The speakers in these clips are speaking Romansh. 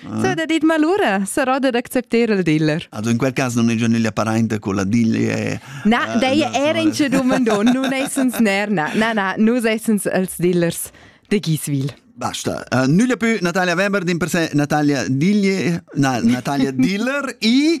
Se da dit malura, sarò da accepter il dealer. Also in quel cas non è già nella parente con la diglie. Na, uh, dei era in ce domandon, nun essens ner, na, na, na, nus essens els dealers de Giswil. Basta. Uh, nulla più Natalia Weber, din per sé Natalia Diglie, na, Natalia Diller e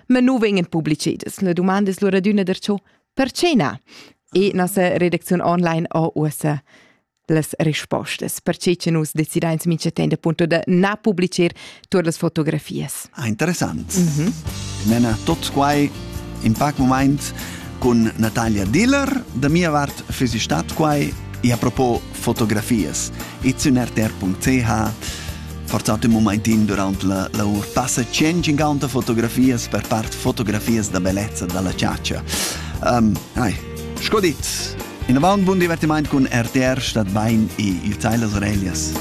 Ma nu vegnan publicedas. La domanda es lura adüna darcho perche na? E nossa redacziun online ho uossa las respostas, perche che nus decidains mincha temp appunto da na publicher tuot las fotografias. Ah, interessant. Mm -hmm. Mena tot quai in pac moment con Natalia Diller. Da mia vart fesi stat quai e a propos fotografias. izunerter.ch Fortuna un momentin durant la lavor passa tschient cinquanta fotografias, per part fotografias da bellezza dalla ciaccia. Um, ai, sco dit, in avant bun divertiment cun RTR statt bein e ihr Teil das Orelias.